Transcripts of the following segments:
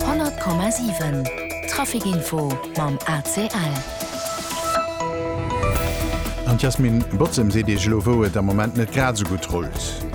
100 Komma 7 Trafikinfo mam ACL. An d'Yasmine Bozem seet Iech elo wou et am Moment net grad esou gutt rullt.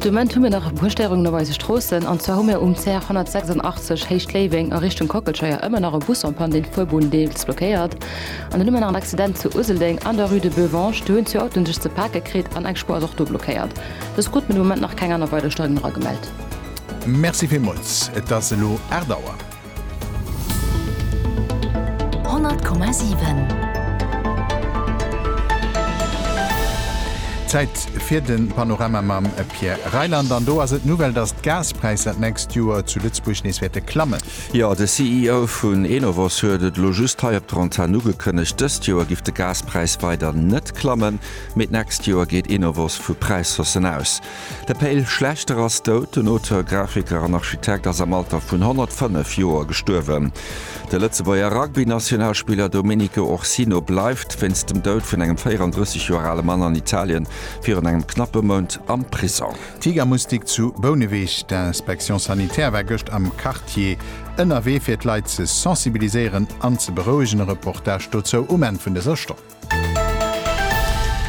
De Moment hu mir nach e puer Stéierungen op eise Stroossen. An zwar hu mir um CR 186 Héicht Léiweng a Richtung Kockelscheier ëmmer nach e Bus en Panne, deen d'Fuerbunn deels blockéiert. An dann hu mir nach en Accident zu Useldeng an der Rue de Beuvange. Do hunn zwee Autoen sech ze pake kritt an eng Spuer ass och do blockéiert. Dës krut den Moment nach keng aner weider Steigung era gemellt. Merci villmols, et ass elo 8 Auer. 100,7. Zäit fir de Panorama mam Pierre Reyland. An do ass et d'Nouvelle, datt d'Gaspräisser d'nächst Joer zu Lëtzebuerg nees wäerte klammen. Jo, de CEO vun Enovos huet et elo just hei op der Antenn ugekënnegt, Dëst Joer giff de Gaspräis weider net klammen. Mee d'nächst Joer geet Enovos vu Präishaussen aus. De Pe'l Schlechter ass dout. Den Auteur, Grafiker an Architekt ass am Alter vun 105 Joer gestuerwen. De Lëtzebuerger Rugbynationalspiller Domenico Orsino bleift wéinst dem Doud vun engem 34 Joer ale Mann an Italien virun engem knappe Mount am Prisong. Tigermustik zu Bouneweg, D'Inspection sanitaire war gëscht am Quartier ënnerwee fir d'Leit ze sensibiliséieren an ze berouegen. E Reportage dozou um Enn vun dëser Stonn.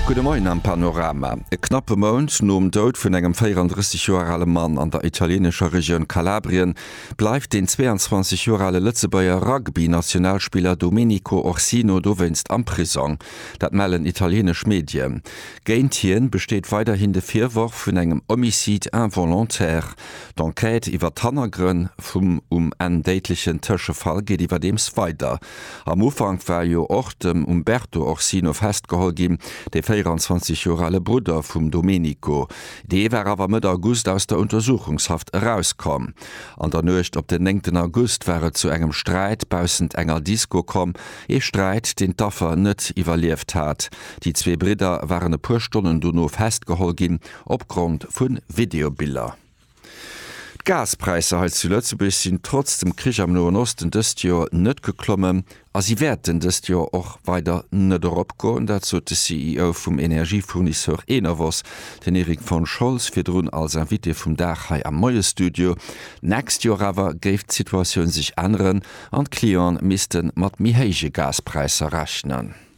Gudde Moien am Panorama. E knappe Mount nom Doud vun engem 34 Joer ale Mann an der italieenescher Regioun Kalabrien bleift den 22 Joer ale Lëtzebuerger Rugby-Nationalspiller Domenico Orsino dowéinst am Prisong. Dat mellen italieenesch Medien. Géint hien besteet weiderhin de Virworf vun engem Homicide involontaire. D'Enquête iwwer d'Hannergrënn vum um Enn déidlechen Tëschefall geet iwwerdeems weider. Am Ufank war jo och dem Umberto Orsino festgeholl ginn, dee 24 Joer ale Brudder vum Domenico. Dee war awer Mëtt August aus der Untersuchungshaft erauskomm. An der Nuecht op den néngten August war et zu engem Sträit baussent enger Disco komm, ee Sträit, deen d'Affer net iwwerlieft hat. Déi zwee Bridder waren e puer Stonnen dono festgeholl ginn, opgrond vu Videobiller. D'Gaspräisser hei zu Lëtzebuerg sinn trotz dem Krich am Noen Osten dëst Joer net geklommen a si wäerten dëst Joer och weider net eropgoen. Dat sot de CEO vum Energiefournisseur Enovos, den Erik von Scholz, virdrun als Invité vum Dag hei am Moie-Studio. D'nächst Joer awer géif d'Situatioun sech änneren an d'Clienten misste mat méi héije Gaspräisser rechnen.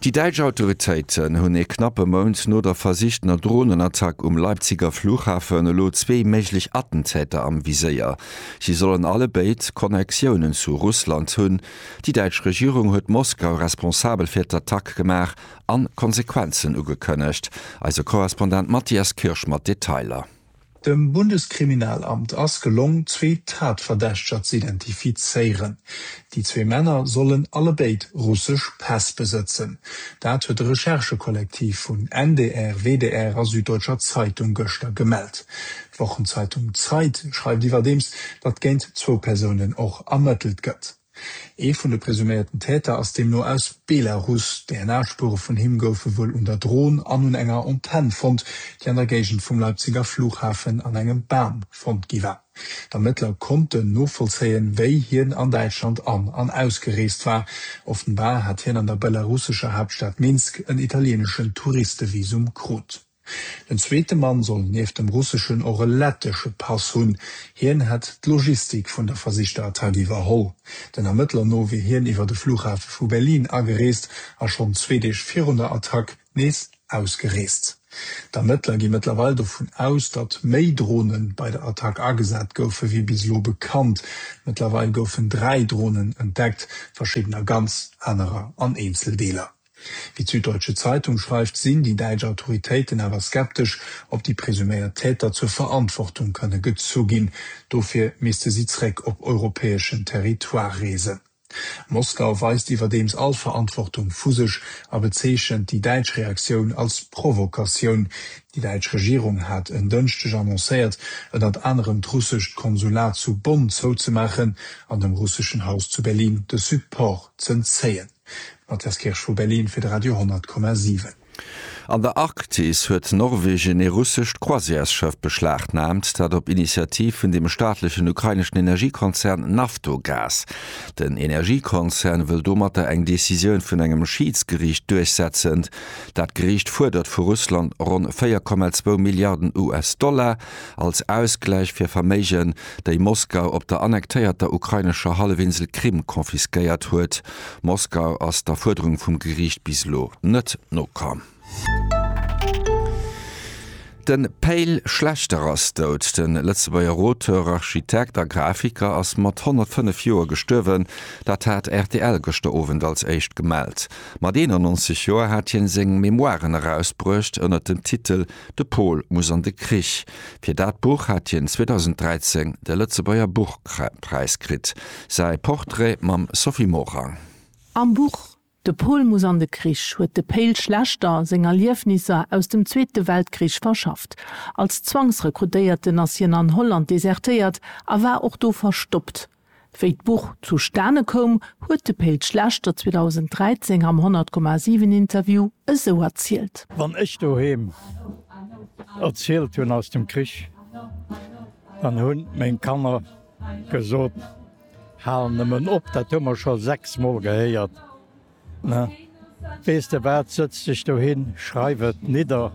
Déi däitsch Autoritéiten hunn ee knappe Mount no der versichtener Dronenattack um Leipziger Flughafen elo zwee méiglech Attentäter am Viséier. Si sollen allebéid Connectiounen zu Russland hunn. Déi däitsch Regierung huet Moskau responsabel fir d'Attack gemaach an Konsequenzen ugekënnegt. Eise Korrespondent Matthias Kirsch mat Detailer. Dem Bundeskriminalamt ass gelong, zwee Tatverdächteger z'identifizéieren. Déi zwee Männer sollen allebéid russesch Päss besëtzen. Dat huet de Recherchekollektiv vun ndr, WDR a Süddeutscher Zeitung gëschter gemellt. D'Wochenzeitung Zeit schreift iwwerdeems, datt géint zwou Persounen och ermëttelt gëtt. Ee vun de presuméierten Täter ass deemno aus Belarus. DNA-Spuere vun him goufe wuel un der Dron an un enger Antenn fonnt, déi an der Géigend vum Leipziger Flughafen an engem Bam fonnt gi war. D'Ermëttler konnten novollzéien, wéi hien an Däitschland an an ausgereest war. Offenbar hat hien an der belarussescher Haaptstad Minsk en italieeneschen Touristevisum krut. Den zweete Mann soll nieft dem russeschen och e lettesche Pass hunn. Hien hätt d'Logistik vun der versichter Attack iwwerholl. Den Ermëttler no wier hien iwwer de Flughafe vu Berlin agereest a schonn zwee Deeg virun der Attack nees ausgereest. D'Ermëttler gi mëttlerweil dovun aus, datt méi Drone bei der Attack agesat goufe wéi bis elo bekannt. Mëttlerweil goufen dräi Dronen entdeckt, verschiddener ganz, anerer an Eenzeldeeler. Wéi d'Süddeutsche Zeitung schreift, sinn déi däitsch Autoritéiten awer skeptesch, ob déi presuméiert Täter zur Verantwortung kënne gezu ginn. Dofir misste si zréck op europäeschen Territoire reesen. Moskau weist iwwerdeems all Verantwortung vu sech a bezeechent déi däitsch Reaktioun als Provokatioun. Déi däitsch Regierung hat en Dënschdeg annoncéiert, ënnert anerem d'russescht Konsulat zu Bonn zouzemaachen an dem russeschen Haus zu Berlin de Support z'entzéien. Mathias Kirsch vu Berlin fir de Radio 10,7. An der Arktis huet Norwegen ee russescht Croisièresschëff beschlagnaamt, dat op Initiativ vun dem staatlechen ukraineschen Energiekonzern Naftogaz. Den Energiekonzern wëll domatter eng Decisioun vun engem Schiidsgeriicht duerchsetzen. Dat Geriicht fuerdert vu Russland ronn 4,2 Milliarden US-Dollar. als Ausgläich fir Verméigen, déi Moskau op der annektéierter ukrainescher Hallefinsel Krim confisquéiert huet. Moskau ass der Fuerderung vum Geriicht bis elo net nokomm. De Pe'l Schlechter ass dout. De Lëtzebuerger Auteur, Architekt a Grafiker ass mat 105 Joer gestuerwen. Dat hat rtl gëschter Owend als éischt gemellt. Mat 91 Joer hat hien seng Memoiren erausbruecht ënnert dem Titel De Pol muss an de Krich. Fir dat Buch hat hien 2013 de Lëtzebuerger Buchpräis kritt. Säi Portrait mam Sophie Morang. Am Buch De Pol muss an de Krich huet de Péil Schlechter seng Erliefnisser aus dem Zweete Weltkrich verschafft. Als Zwangsrekrutéierten ass hien an Holland desertéiert a war och do verstoppt. Wéi d'Buch zustane koum, huet de Péit Schlechter 2013 am 100,7 Interview esou erzielt. Wann ech doheem erzielt hunn aus dem Krich, dann hunn meng Kanner gesot, Hal nëmmen op, dat hu mer scho sechs Mol gehéiert. Na, weess de wat, sëtz dech dohin, schreif et nidder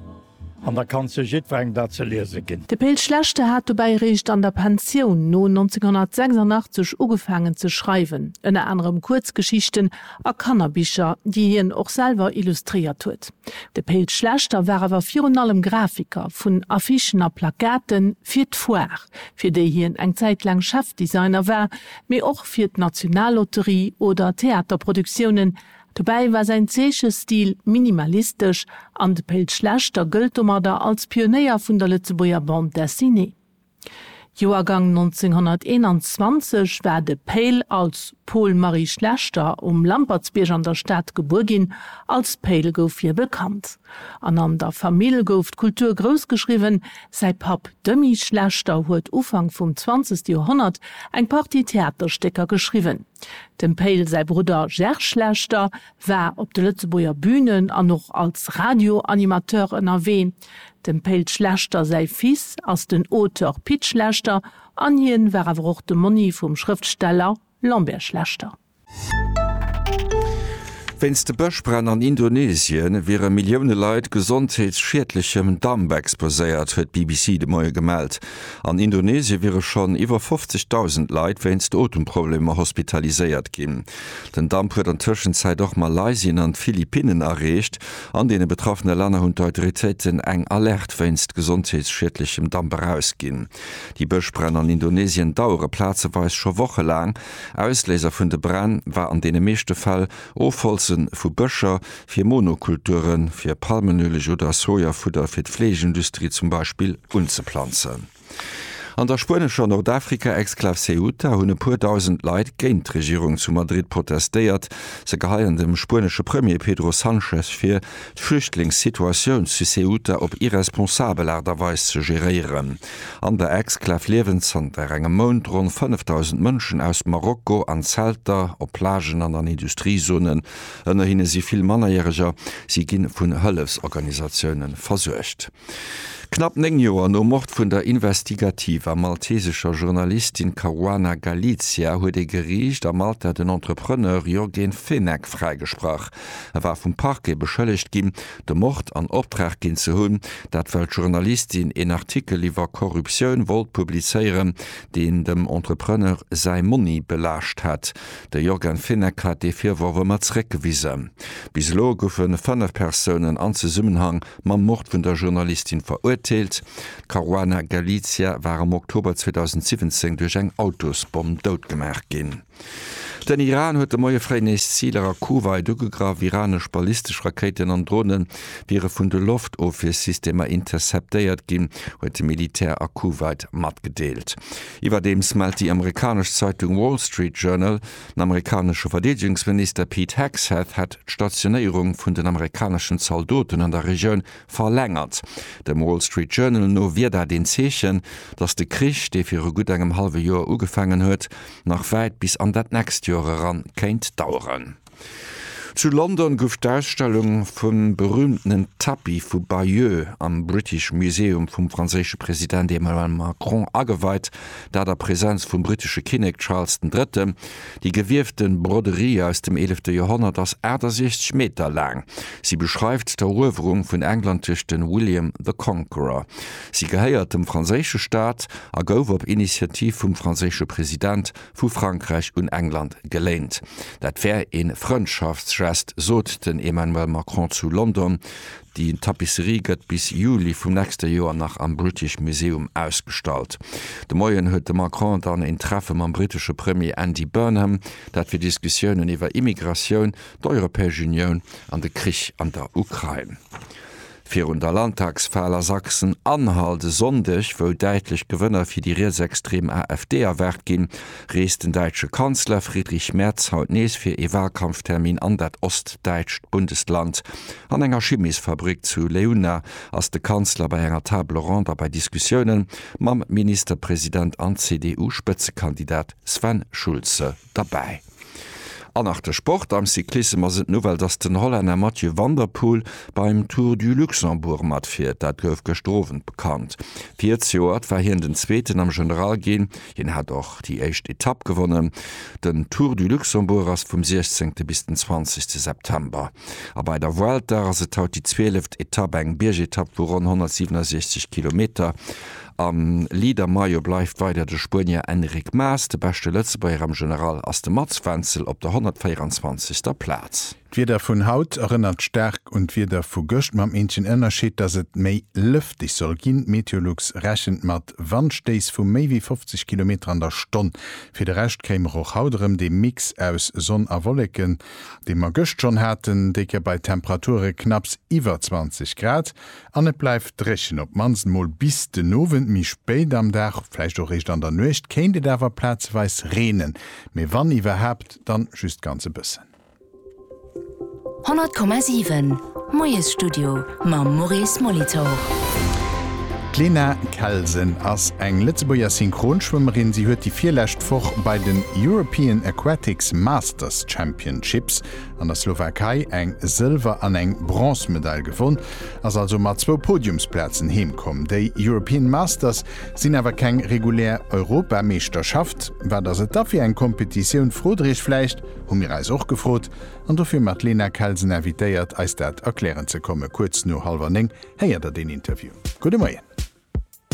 an da kann zu jiddwerengem dat ze liese ginn. De Pe'l Schlechte hat dobäi eréischt an der Pensioun no 1986 ugefaangen ze schreiwen, ënner anerem Kuerzgeschichten a Kannerbicher, déi hien och selwer illustréiert huet. De Pe'l Schlechter war awer virun allem Grafiker vun Affichen a Plakaten fir d'Foire, fir déi hien eng Zäit laang Chefdesigner war, mee och fir d'Nationallotterie oder Theaterproduktiounen. Dobäi war säin Zeechestil minimalistesch an de Péll Schlechter gëllt domadder als Pionéier vun der Lëtzebuerger Bande Dessinée. Joergang 1921 war de Péll als Paul Marie Schlechter um Lampertsbierg an der Stad gebuer ginn. Als Péll gouf hie bekannt an an der Famill gouf d'Kultur groussgeschriwwen. Säi Papp Demy Schlechter huet Ufank vum zwanzegste Joerhonnert eng Partie Theaterstécker geschriwwen. Dem Payl säi Brudder Gerge Schlechter war op de Lëtzebuerger Bünen an och als Radioanimateur ënnerwee. Dem Payl Schlechter säi Fils ass den Auteur Pit Schlechter an hien war awer och de Monni vum Schrëftsteller Lambert Schlechter. Wéinst de Bëschbränn an Indonesien wiere Millioune Leit gesondheetsschiedlechem Damp exposéiert, huet d'BBC de Moie gemellt. An Indonesie wiere schonn iwwer 50.000 Leit wéinst Otemproblemer hospitaliséiert ginn. Den Damp huet an Tëschenzäit och Malaysien an d'Philippinnen erreecht. An deene betraffene Länner hunn d'Autoritéiten eng Alerte wéinst gesondheetsschiedlechem Damp erausginn. Déi Bëschbränn an Indonesien dauere plazeweis scho wochelaang. Ausléiser vun de Bränn war an deene meeschte Fäll Ofholze vu Bëscher fir Monokulture fir Palmenueleg oder Sojafudder fir d'Fleeschindustrie zum Beispill unzeplanzen. An der spuenescher Nordafrika-Exklav Ceuta hunn e puer dausend Leit géint d'Regierung zu Madrid protestéiert. Se geheien dem spuenesche Premier Pedro Sanchez vir, d'Flüchtlingssituatioun zu Ceuta op irresponsabel Aart a Weis ze geréieren. An der Exklav liewen zanter engem Mount ronn 5.000 Mënschen aus Marokko an Zelter, op Plagen an an Industriezonen. Ënner hinne si vill Mannerjäreger. Si gi vun Hëllefsorganisatioune versuergt. Knapp néng Joer nom Mord vun der investigativer maltesescher Journalistin Caruana Galizia huet ee Geriicht a Malta den Entrepreneur Yorgen Fenech fräigesprach. E war vum Parquet beschëllegt ginn, de Mord an Optrag ginn ze hunn, dat well d'Journalistin een Artikel iwwer Korruptioun wollt publizéieren, deen dem Entrepreneur säi Monni belaascht hätt. De Yorgen Fenech hat dee Virworf ëmmer zeréckgewisen. Bis elo goufe fënnef Persounen an Zesummenhang mam Mord vun der Journalistin verurteelt. D'Caruana Galizia war am Oktober 2017 duerch eng Autosbomm doutgemaach ginn. Den Iran huet de Moie fréi nees Ziler a Kuwait ugegraff. Iranesch ballistesch Rakéiten an Drone wiere vun de Loftofwiersystemer interceptéiert ginn, huet de Militär a Kuwait matgedeelt. Iwwerdeems mellt déi amerikanesch Zeitung Wall Street Journal, den amerikanesche Verdeedegungsminister Pete Hegseth hätt d'Stationéierung vun den amerikaneschen Zaldoten an der Regioun verlängert. Dem Wall Street Journal no wier dat een Zeechen, datt de Krich, dee viru gutt engem hallwe Joer ugefaangen huet, nach wäit bis an dat nächst Joer eran kéint daueren. Zu London gouf d'Ausstellung vum berüümtenen Tapis vu Bayeux am British Museum vum franséische President Emmanuel Macron ageweit, dat a Presenz vum brittesche Kinnek Charles den Drëtten. Déi gewiefte Broderie aus dem eelefte Joerhonnert ass 68 Meter laang. Si beschreift d'Eruewerung vun England duerch de William the Conqueror. Si gehéiert dem franséische Staat a gouf op Initiativ vum franséische President vu Frankräich un England geléint. Dat wär ee Frëndschaftsgest, sot den Emmanuel Macron zu London. Déi Tapisserie gëtt bis Juli vum nächste Joer nach am British Museum ausgestallt. De Moien huet de Macron dann een Treffe mam brittesche Premier Andy Burnham, dat fir Diskussiounen iwwer Immigratioun, d'Europäesch Unioun an de Krich an der Ukrain. Virun der Landtagswal a Sachsen-Anhalt e Sonndeg, wou däitlech Gewënner fir déi rietsextrem AfD erwaart ginn, reest den däitsche Kanzler Friedrich Merz haut nees fir ee Walkampftermin an dat ostdäitscht Bundesland. An enger Chimesfabrik zu Leuna ass de Kanzler bei enger Table ronde a bei Diskussioune mam Ministerpresident an CDU-Spëtzekandidat Sven Schulze derbäi. An nach de Sport, Am Cyclissem ass et d'Nouvelle, dass den Hollänner Mathieu van der Poel beim Tour du Luxembourg matfiert. Dat gouf gëschter Owend bekannt. Virzejoert war hien den Zweeten am General ginn. Hien hat och déi éischt Etapp gewonnen. Den Tour du Luxembourg ass vum 16. bis den 20. September. A bei der Vuelta ass et haut déi zwieleft Etapp, eng Biergetapp vu ronn 167 Kilometer. Am Leader-Maillot bleift weider de Spuenier Enric Mas, de beschte Lëtzebuerger am General ass de Mats Wenzel op der 124. Plaz. D'Wieder vun haut erënnert staark un d'Wieder vu gëscht, mam eenzegen Ënnerscheed, dass et méi lëfteg soll ginn. Meteolux rechent mat Wandstéiss vu méi wéi 50 Kilometer an der Stonn. Fir de Rescht kéim mer och haut erëm dee Mix aus Sonn a Wolleken, dee mer gëscht schonn haten, déi Kéier bei Temperature knapps iwwer 20 Grad. An et bleift dréchen, op d'mannst mol bis den Owend. Méi spéit am Dag, vläicht och réischt an der Nuecht, kéint et awer plazeweis reenen, mee wann iwwerhaapt, dann just ganz e bëssen. 100,7 Moiesstudio mam Maurice Molitor. D'Lena Kelsen ass eng Lëtzebuerger Synchronschwëmmerin. Si huet déi virlescht Woch bei den European Aquatics Masters Championships an der Slowakei eng Sëlwer an eng Bronzemedail gewonn, ass also mat zwou Podiumsplazen heem komm. Déi European Masters sinn awer keng regulär Europameeschterschaft. Wat ass et da fir eng Kompetitioun, frot der iech vläicht? Hu mir eis och gefrot an dofir mat Lena Kelsen invitéiert eis dat erklären ze kommen. Kuerz no hallwer néng héiert der den Interview. Gudde Moien.